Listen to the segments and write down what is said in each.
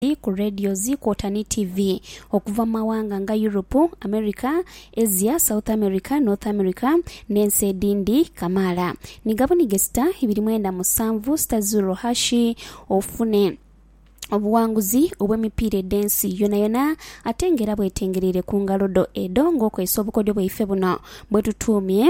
Bbaibbuli ku radios kwota ni tivi okuva mu mawanga nga Yuropu, Amerika, Asia, South Amerika, North Amerika, n'ensi edhindi kamaala. Ni gabunige sita ibiri mwenda musanvu sita zurro hashi ofune obuwanguzi obw'emipiira edh'ensi yonayona ate nga era bwetengereire ku ngalo dho edho ng'okozesa obukodyo bwaife buno bwetutuumye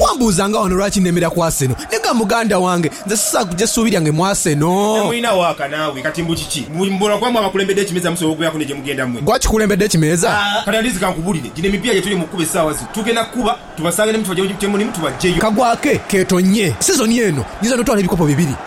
Wambuuza nga wano lwaki nemera ku Arsenal. Naye ga muganda wange, nze sisobola kuja suubi lyange mu Arsenal. Temulina waaka naawe kati mbu kiki? Mbu buli muboolwa kwaamwe abakulembedde ekimeeza musobola okubeeraku ne gye mugenda mmwe? Gwe akikulembedde ekimeeza? Kati at least kankubulire, gino emipiira gyetuli mu kukuba essaawa zino tugenda kukuba tubasange ne mu kifo kyemulimu tubaggyeyo. Kagwake keetonnye sizoni eno nyinza n'otwala ebikopo bibiri.